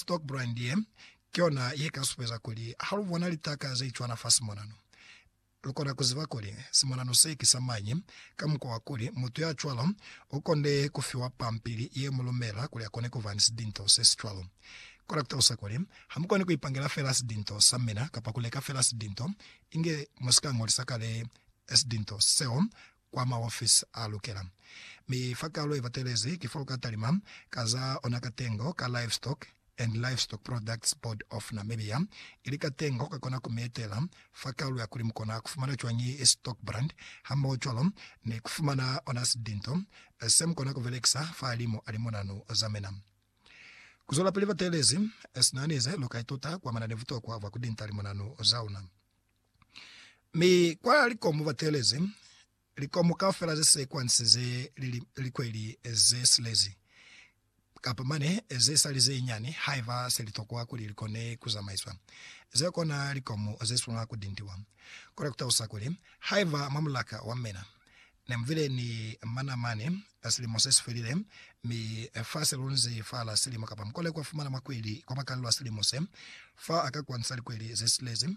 Stokebrand ye, ki yona ye ka supeza kuli ha lu bona litaka ze cwana fa simonano, lu kona ku ziba kuli simonano se ki sa mañi, ka mukwa wa kuli mutu ya cwalo u konde ku fiwa pampili ye mu lumela kuli a kone ku ba ni sidinto se si cwalo. Ku kona ku talusa kuli, Ha mu koni ku ipangela fela sidinto sa mina kapa ku leka fela sidinto, inge mu si ka ñolisa kale sidinto seo kwa maofisi a lukela. Mi fa kalo ye batelezi ki fo ka talima ka za ona katengo ka Livestock and Livestock Products Board of Namibia, ili katengo ka kona ku mi etela fa kalo ya kuli mu kona ku fumana cwañi stock brand hamoho cwalo ni ku fumana ona sidinto se mu kona ku belekisa fahalimu a limonanu za mina. Ku zwelapili batelezi, sina nize lu ka ituta kuamana ni butokwa bwa ku dinta limonanu za una. Mi kwa likomu batelezi likomu kaufela ze sequence ze li likweli ze silezi, kapa mane ze sali ze nyani haiba se litokwa kuli likone kuzamaiswa. Ze kona likomu ze swanela kutintiwa. Kona kutalusa kuli, haiba mwa mulaka wa mena, Ne mu bile ni mana mane ka silimo se si felile, mi fa se lunzi fa la silimo, kapa mukole kwa fumana makweli kwa makalelo a silimo se, fa a ka kwantisa likweli ze silezi.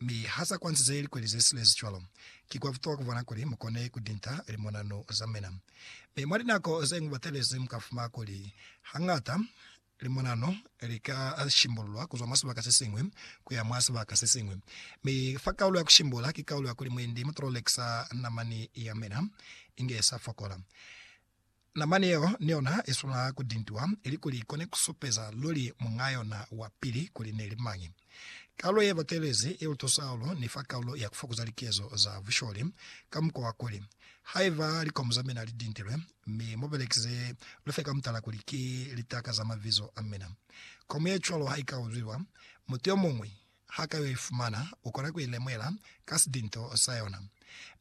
Mi ha sa kwantize likweli ze silezi cwalo, ki kwa butuha ku bona kuli mu kone ku dinta limonanu za mina. Mi mwa linako ze ñwi batelezi mu ka fumana kuli hañata Limonano li ka shimbululwa ku zwa mwa sibaka se siñwi ku ya mwa sibaka se siñwi, mi fa kaulo ya ku shimbula ki kaulo ya kuli mwendi mu tololekisa namani ya mina inge sa fokola. Namani yeo ni yona i swanela ku dintiwa ilikuli i kone ku supeza luli muñ'a yona wa pili kuli ne li mañi. Kaulo ye batelezi ye lutusa hahulu ni fa kaulo ya ku fokoza likezo za busholi ka mukwa wa kuli, haiba likomu za mina li dintilwe, Mi mu belekize lufe ka mutala kuli ki litaka za mabizo a mina. Komu ye cwalo ha i ka uzwiwa, mutu yo muñwi ha ka yo i fumana, u kona ku i lemuhela ka sidinto sa yona.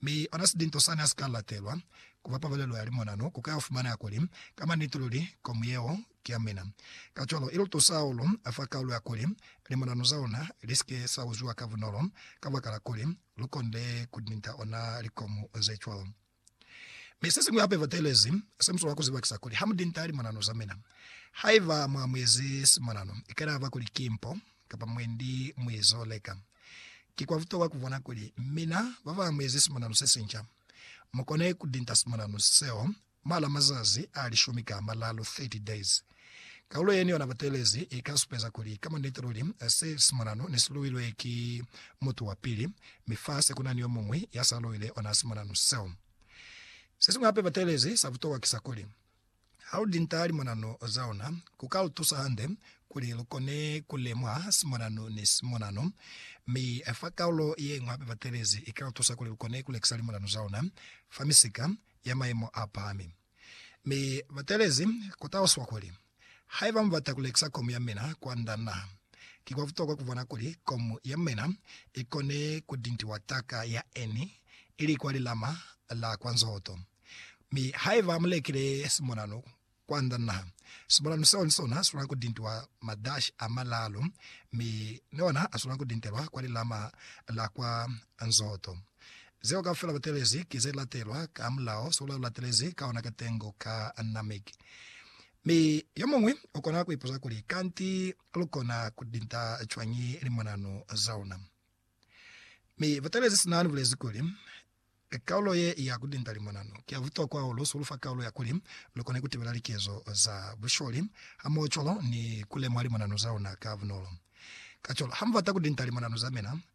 Mi ona sidinto sani ha si ka latelwa ku ba pabalelo ya limonano, ku ka yo fumaneha kuli, ka maniti luli, komu yeo ki ya mina. Kacwalo, i lu tusa hahulu fa kaulu ya kuli limonano za luna li si ke sa uzwiwa ka bunolo, kabakala kuli lu konde ku dinta ona likomu ze cwalo. Mi sesiñwi hape ba telezi Samsone wa ku zibakisa kuli, Ha mu dinta limonano za mina. Haiba mwa mu ezi simonano, ikanaba kuli ki mpo, kapa mwendi mu izo leka. Ki kwa butokwa ku bona kuli mina ba ba mu ezi simonano se sinca. Mu kone ku dinta simonano seo mwa la mazazi a lishumi ka a malalu, 30 days. Kaulo yeni yona butelezi i ka supeza kuli ka muniti luli se simonano ne si luilwe ki mutu wa pili, mi fa se ku na ni yo muñwi ya sa luile ona simonano seo. Se siñwi hape butelezi sa butokwa ki sa kuli, ha lu linta limonano za luna, ku ka lu tusa hande kuli lu kone ku lemuha simonano ni simonano. Mi fa kaulo ye ñwi hape butelezi i ka lu tusa kuli lu kone ku lekisa limonano za luna fa misika ya maimo a pahami. Mi batelezi ku taluswa kuli, Haiba mubata kulekisa komu yamina kwa nda na, ki kwa butokwa kubona kuli komu yamina ikone kudintiwa taka ya Eni ili kwa lilama la kwa nzoto. Mi haiba mulekile simonanu kwa nda na, simonanu seo nisona silwana kudintiwa madashi amalalu mi niona asilwana kudintelwa kwa lilama la kwa nzoto. Zeo kaufela batelezi ki ze latelwa ka mulao, sula ulatelezi ka ona katengo ka anamiki. Mi yomuñwi ukona kuipuza kuli, Kanti lukona kulinda cwañi limonanu zauna? Mi batelezi sina nibulezi kuli, Kaulo ye ya kulinda limonanu ki ya butokwa hahulu, sulufa kaulo ya kuli lukone kutibela likezo za busholi hamohocwalo ni kulemuha limonanu zauna ka bunolo. Kacwalo, hamubata kulinda limonanu zamina,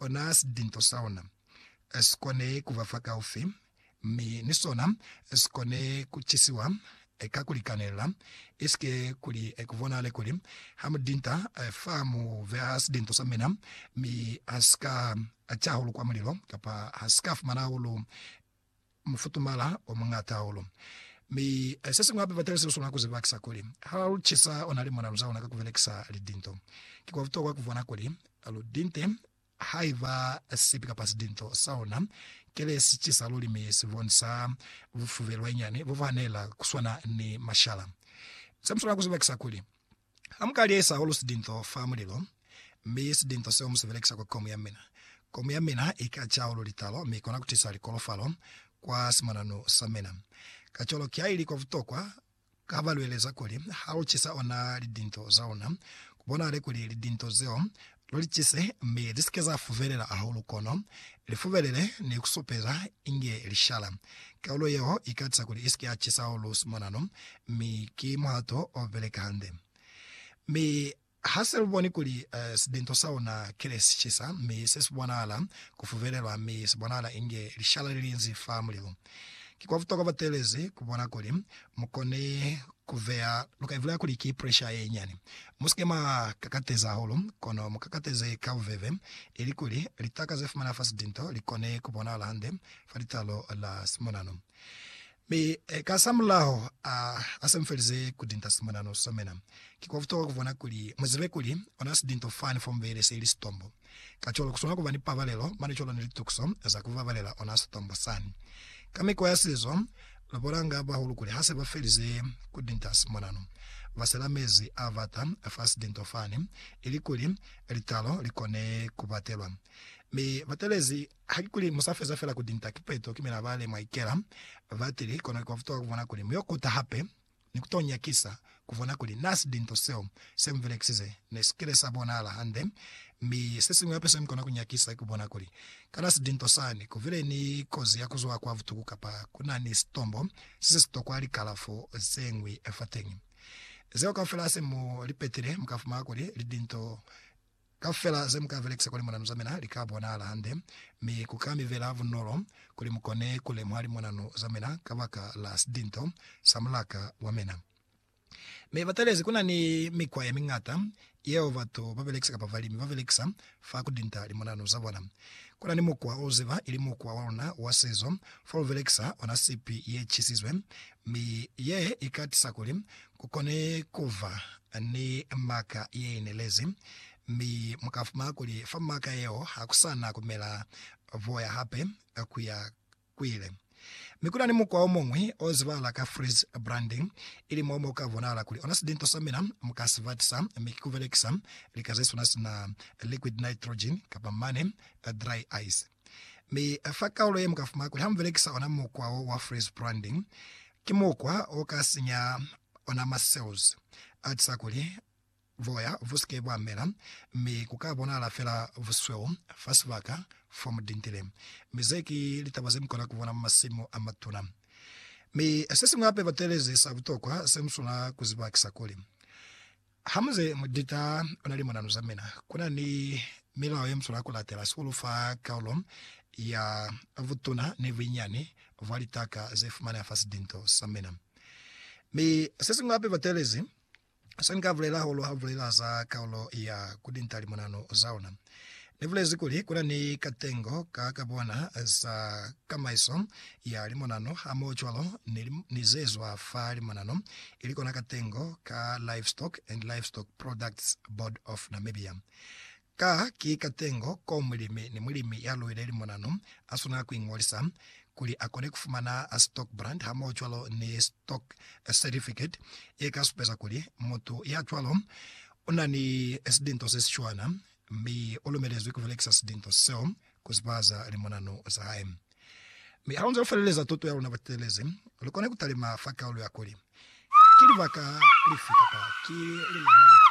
Ona sidinto sa ona, si kone ku ba fa kaufi, mi ni sona si kone ku cisiwa ka ku likanelela, isike kuli ku bonahale kuli ha mu dinta fa mu beha sidinto sa mina, mi ha si ka ca hahulu kwa mulilo, kapa ha si ka fumana hahulu mufutumala o muñata hahulu. Mi se siñwi hape, batalisi lu swanela ku zibakisa kuli ha lu cisa ona li mona lu za ona ka ku belekisa lidinto. Ki kwa butokwa ku bona kuli lu dinte haiba sipi kapa sidinto sa ona kile si cisa luli mi si bonisa bufubelwa inyani bo bu hanela ku swana ni mashala. Se mu swanela ku zibakisa kuli Ha muka liesa hahulu sidinto fa mulilo, mi sidinto seo mu si belekisa kwa komu ya mina, komu ya mina i ka ca hahulu litalo mi i kona ku tisa likolofalo kwa simonanu sa mina. Kacwalo, ki ha ili kwa butokwa ha ba lweleza kuli ha lu cisa ona lidinto za luna, ku bonahale kuli lidinto zeo Lu li cise, mi li si ke za fuvelela hahulu kono li fubelele ni ku supeza inge li shala. Kaulo yeo i katisa kuli i si ke ya cisa hahulu simonano, mi ki muhato o beleka hande. Mi ha se lu boni kuli sidinto sa luna kile si cisa, mi se si bonahala ku fubelelwa mi si bonahala inge lishala li linzi fa mulilu, ki kwa butokwa batelezi ku bona kuli Mu kone ku vea, lu ka ivulaya kuli ki presha ye nyani. Mu si ke mwa kakateza hahulu, kono mu kakateze ka bubebe, ilikuli litaka ze fumana fa sitinto li kone ku bonahala hande fa litalo la simonano. Mi kasamulaho a, ha se mu felize ku tinta simonano somena, ki kwa butokwa ku bona kuli mu zibe kuli ona sitinto fani fo mubele se ili sitombo. Kacwalo, kuswana kuba ni pabalelo mane cwalo ni litukiso za kubabalela ona sitombo sani. Ka mikwa ya sizo, lubulanga bahulu kuli hase bafelize kudinta simonano, basela mezi abata fa sidinto fani, ilikuli litalo likone kubatelwa. Mi batelezi, hakikuli musafeza fela kudinta kipeto, kimelaa balemwa ikela batili, kono ikwafutuha kubona kuli muyo kuta hape. ni ku to nyakisa ku bona kuli na si linto seo se mu belekisize ne si kile sa bonahala hande. Mi se siñwi hape se mu kona ku nyakisa ki ku bona kuli, kana si linto sani ku bile ni kozi ya ku zwa kwa butuku kapa ku na ni sitombo se si si tokwa likalafo ze ñwi fateñi. Zeo kaufela ha se mu li petile, mu ka fumana kuli li linto Kaufela ze mu ka belekisa kuli monanu za mina li ka bonahala hande, mi ku ka mi bela bunolo kuli mu kone ku lemuha limonanu za mina kabaka la sidinto sa mulaka wa mina. Mi batalezi ku na ni mikwa ye miñata yeo batu ba belekisa kapa balimi ba belekisa fa ku dinta limonanu za bona. Ku na ni mukwa o u ziba, ili mukwa wa luna wa sizo, fo lu belekisa ona sipi ye chisizwe, mi ye i ka tisa kuli Ku kone ku ba ni maka ye inelezi, mi mu ka fumana kuli fa maka yeo ha ku sa na ku mela boya hape ku ya ku ile. Mi ku na ni mukwa o muñwi o zibahala ka freeze branding, ili mo mo ka bonahala kuli ona silinto sa mina mu ka si batisa, mi ki ku belekisa lika ze swana sina liquid nitrogen kapa mane dry ice. Mi fa kaulo ye mu ka fumana kuli ha mu belekisa ona mukwa wo wa freeze branding, Ki mukwa o ka sinya ona ma cells a tisa kuli boya bu si ke bwa mela, mi ku ka bonahala fela busweu fa sibaka fo mu dintile. Mi ze ki litaba ze mu kona ku bona mwa masimu a matuna. Mi se siñwi hape batelezi sa butokwa se mu swanela ku ziba ki sa kuli, Ha mu ze mu dita ona limonanu za mina, ku na ni milao ye mu swanela ku latela sihulu fa kaulo ya butuna ni bunyinyani bwa litaka ze fumaneha fa sidinto sa mina. Mi se siñwi hape batelezi se ni ka bulela hahulu ha lu bulela za kaulo ya ku dinta limonanu za ona. Ni bulezi kuli kuna ni katengo ka ka bona za kamaiso ya limonano hamohocwalo ni, ni zezwa fa limonano, ili kona katengo ka Livestock and Livestock Products Board of Namibia. Ka ki katengo ko mulimi ni mulimi ya luile limonano a swanela ku ingolisa kuli a kone ku fumana stock brand hamohocwalo ni stock certificate ye ka supeza kuli mutu ya cwalo una ni silinto se si cwana mi u lumelezwi ku belekisa silinto seo ku zibahaza limonano za hae. Mi ha lu nze lu feleleza tuto ya luna butelezi, lu kona ku talima fa kaulu ya kuli, Ki libaka lifi kapa ki lilema lifi?